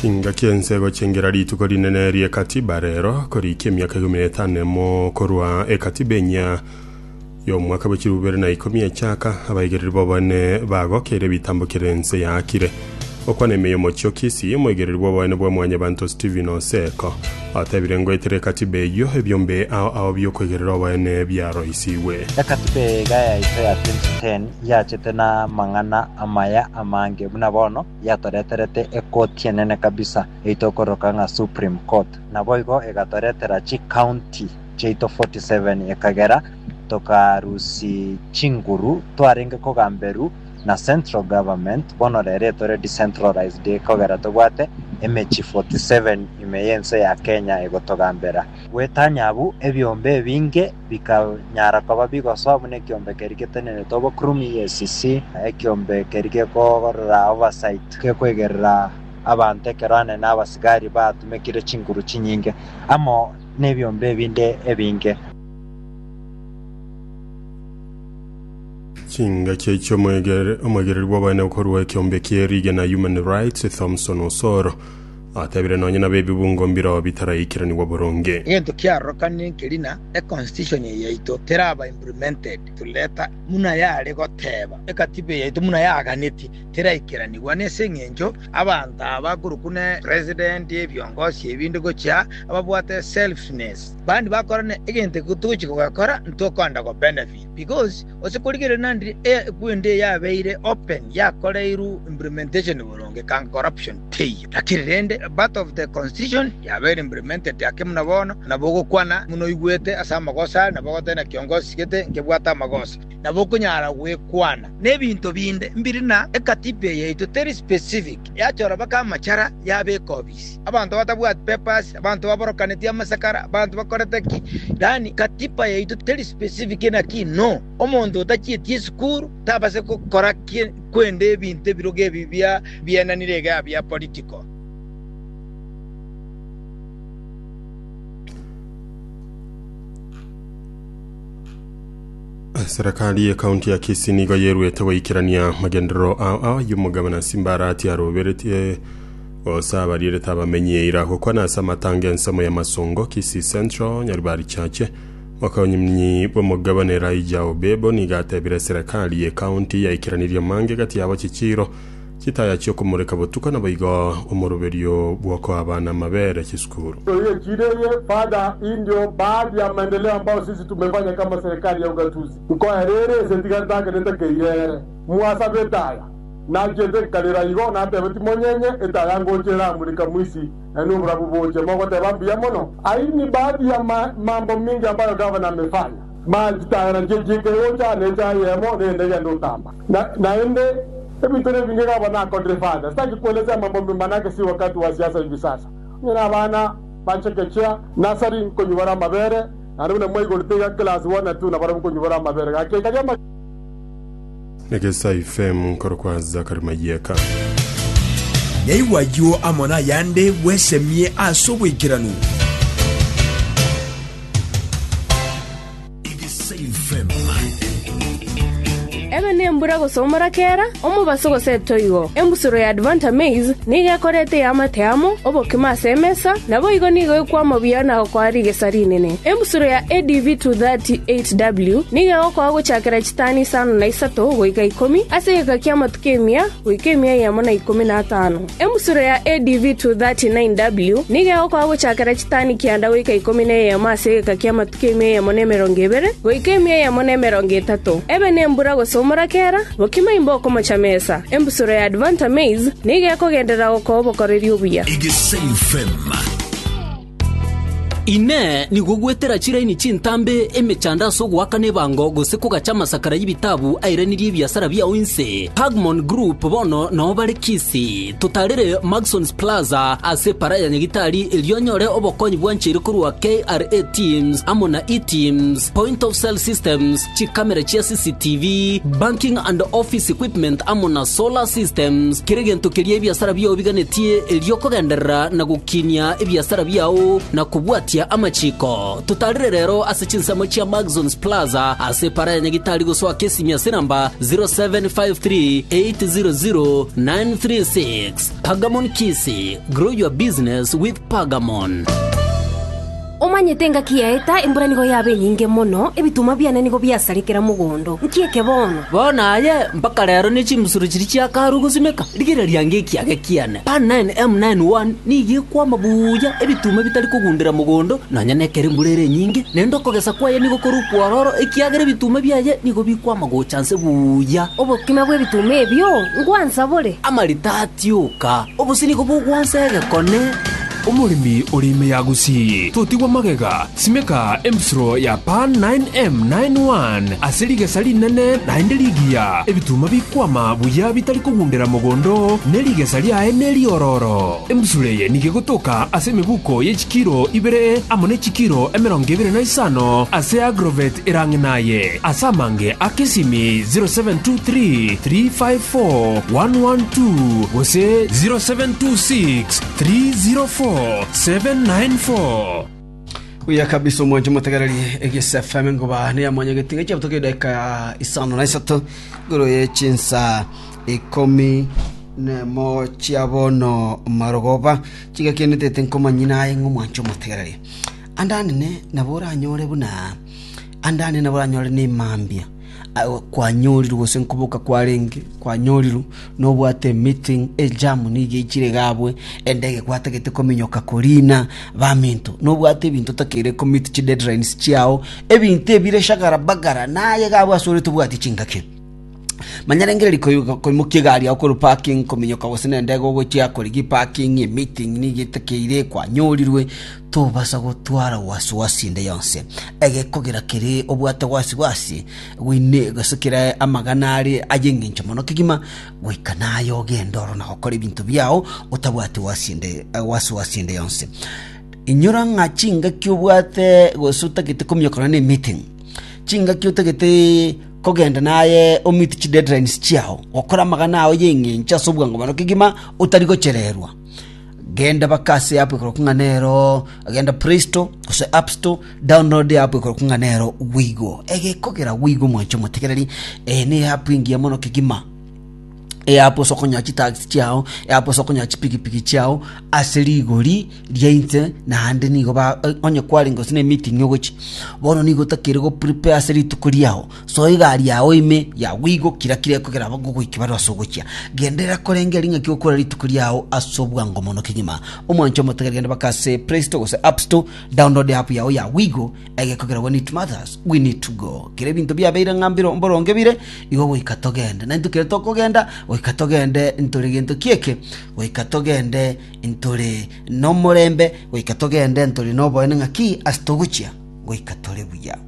Chingaki ense egochengera rituko rinene ri'ekatiba rero, korikia emiaka ikomi na etano emo korwa ekatiba enyia y'omwaka bwe chilifu bibere na ikomi echaka, abaigereri b'oboene bagokeire ebitambo kere ense yaakire. Okwana ime y'omochio Kisii, omoigereri bw'oboene bwa Mwanyabanto Stephen Oseko otebire ngoetera ekatiba eyio ebiombe ao ao bi'okoigerera oboene biaroisigwe. Ekatiba iga yaito ya 2010 yachete namang'ana amaya amange buna bono yatoreterete ekoti enene kabisa eito ekororoka ng'a Supreme Court. Naboigo egatoretera chi county chiaito 47 ekagera tokarusi chinguru twarenge kogamberu na central government bono rero etore decentralized ekogera tobwate emechi 47 ime yense ya Kenya egotogambera. Gwetanya abwo ebiombe ebinge bikanyara koba bigosoa buna ekiombe keria geteneneretwe obokurumi, EACC, na ekiombe keria gekogorera oversight gekwegerera abanto ekero anene abasigari batumekire chinguru chinyinge amo nebiombe ebinde ebinge. Chingaki echio omoegereri bw'abaene korwa ekiombe kie rigena Human Rights, Thomson Osoro, Atebire nonye nabe ebibungo mbiroo bitaraikiranigwa boronge. Egento kiarorokanire nkeri na e constitution eye yaito teraba implemented to letter buna yare goteba ekatiba eye yaito buna yaganeti teraikeranigwa nese engencho abanto aba korokwa ne president ebiongosi ebinde gochia ababwate selfness bandi bakorana egento togochia kogekora ntokonda go benefit because Gose korigereria naende equendo eye yabeire open yakoreirwe implementation boronge ekanga corruption teiyo. Lakini rende a part of the constitution yabeire implemented ake buna bono nabo ogokwana buna oigwete ase amagoso are nabo ogoteba naki ongosigete nkebwate amagoso nabo okonyara gwekwana nebinto binde mbiri na ekatiba eye yaito teri specific yachora baka amachara yabeka obi. abanto batabwati papers, abanto baborokanetie amasakara, abanto bakorete ki, yaani katiba yaito teri specific naki no omonto otachieti esukuru tabase gokora ki kwende ebinto ebiroge ebi bia bienanire iga bia political. Serikali ya kaunti ya Kisii nigo yeruete goikerania magenderero ao ay'omogabana Simbarati aroberetie Gose abarierete abamenyi eira gokwana ase amatanga ensemo y'amasongo Kisii Central, Nyaribari Chache. Mokonyi bw'omogabane Elijah Obebo nigo atebire serekari y'ekaunti yaikiranirie amange gati yabo chichiiro chitaya chi'okomoreka botuko naboigo omoroberio bw'okoa abana amabere chisukuru. Oye chireye Father indio baadhi ya maendeleo ambao sisi tumefanya kama serikali ya ugatuzi nkoa ere ere ese tiga ntakerete keirere mwasabete aya Nachiete nkarera igo, nateba, Timonyenye, etaya ngocha eramurika mwisi, yaani oborabu boche. Mogoteba, Mbuya mono. Ayio ni baadhi ya mambo mingi ambayo gavana amefanya. Maya chitayana chie chiika egocha, ne echae eyemo, ne endege ende otamba. Na, naende, ebinto ne ebinge gavana akorire fada. Sitaki kuelezea mambo mema naki si wakati wa siasa hivi sasa. Onye na abana ba chekechea, nursery, nkonyubora amabere, naende buna mwaigorete iga class one na two nabarabu nkonyubora amabere. Gaki ekaria ama. Negesai fm nkorokwa Zachary Mayeka. Yaigwa ayio amo nayande bwesemie ase oboikeranu. Ebe nembura gosomora kera omobaso gose etoigo. Embusuro ya Advanta Maize nigo ekorete eamate amo obokima ase emesa, nabo igo nigo ekwama buya na gokoa rigesa rinene. Embusuro ya ADV 238W nigo egokoa gochakera tani isano na isato goika ikomi, ase egeka ki'amatuko emia goika emia eyemo na ikomi na atano. Emusuro ya ADV 239W nigo egokora gochakera chitani kianda goika ikomi na eyemo ase egeka ki'amatuko emia eyemo na emerongo ebere goika emia eyemo na emerongo etato, ebe nembura gose omorakera, bokima imbe okomocha mesa. Embusuro ya Advanta Maize nigo ekogenderera gokoa obokoreri obuya. Egesaim Fm. Inee! Nigo gwetera chiraini chintambe emechando ase ogoakana ebango gose kogacha amasakara y'ebitabu airanirie ebiasara biao inse? Pagmon Group bono nao bare Kisii. Totarere Maxons Plaza ase Para ya Nyagitari erio onyore obokonyi bwancheire korwa KRA Teams amo na eTeams, Point of Sale Systems, chikamera chia CCTV, banking and office equipment amo na solar systems, kera egento keria ebiasara biao biganetie erio kogenderera na gokinia ebiasara biao na kobwatia amachiko. Totarire rero ase chinsemo chia Maxons Plaza ase epara ya Nyagitari gosoa Kesimi ase namba 0753800936. Pagamon Kisi, grow your business with Pagamon. Omanyete engaki yaeta, embura nigo yaba enyinge mono, ebitunwa biane nigo biasare kera mogondo. Nki eke bono? Bono aye mpaka rero ne chimbusuro chiria chiakarwa gosimeka, rigereria ngekiage kiane. Pan 9 M 9 1 nigo ekwama buya, ebitunwa bitari kogundera mogondo, nonya nekero embura ere enyinge, naende okogesa kwaye nigo kore okwororo, ekiagera ebitunwa biaye nigo bikwama gocha nse buya. Obokima bw'ebitunwa ebio ngwansa bore? Amarita atioka, obosio nigo bogwansa egekone. Omoremi ore ime ya Gusii, totigwa magega, simeka embisuro ya Pan 9M 9 One ase rigesa rinene naende rigiya, ebituma bikwama buya bitari kogundera mogondo oo, ne rigesa riaye neriororo. Embisuro eye nigo egotoka ase emebuko ye chikiro ibere amo ne chikiro emerongo ebere na isano ase agrovet erang'e naye, ase amange a kesimi 0723 354 112 gose 0726 304,794. Buya kabisa omwancho motegereri egese FM ngoba ne amanya getinga chia butoke dakika ya isano na isato goro ye chinsa ikomi nemo chia bono marogoba chiga kende tete nkomanyina aye ng'omwancho motegereri andanene nabo oranyore buna Andani nabo oranyore nemambia kwanyorirwe gose nkoboka kwarenge kwanyorirwe, nobwate emeeting, ejam nigo eichire iga abwo, endege gwatagete kominyoka korina baminto, nobwate ebinto otakeire komeet chideadlines chiao, ebinto ebire shagara bagara naye iga abwo ase ore tobwati chingaki. Manya rende riria koigo koimokia egari yao korwa parking kominyoka gose nendege ogochia korigia eparking, emeeting nigo etakeire kwanyorirwe, Tobasa gotwara wasiwasi ende yonsi. Egekogera kere obwate wasiwasi, gwine gose kera amagana are ay'engencho mono kegima, goika naye ogende oro na gokora ebinto biao otabwati wasi ende, wasiwasi ende yonsi. Inyora ng'a chingaki obwate gose otagete komiokana na emeeting, chingaki otagete kogenda naye o-meet chideadlines chiao, gokora amagana ao y'engencho ase obwango mono kegima otari gochererwa. Genda baka ase eapu ekorokwa ng'a nero genda Play Store gose App Store, download eapu ekorokwa ng'a nero Wigo. Egekogera Wigo mwancha omotegereri, eye ne eapu engiya mono kegima. Eapu ase okonyora chitax chiao, eapu ase okonyora chipigipigi chiao ase rigori ria inse naende nigo ba onye kwarenge gose ne meeting ogochia, bono nigo otakeire go prepare ase rituko riao. Soa egari yao ime ya goigokira kira ekogera bagogoike bare ase ogochia. Genderera korenge erio ng'aki okore rituko riao ase obwango mono kegima. Omwanche omotebie genda baka ase Play Store gose App Store, download app yao ya goigo egekogera When It Matters, We Need to Go. Kera ebinto biabeire ng'a mbiro mboronge bire, igo goika togende. Na intwe kere tokogenda, goika togende ntore gento ki'eke, goika togende ntore nomorembe, goika togende ntore noboene ng'aki ase togochia, goika tore buya.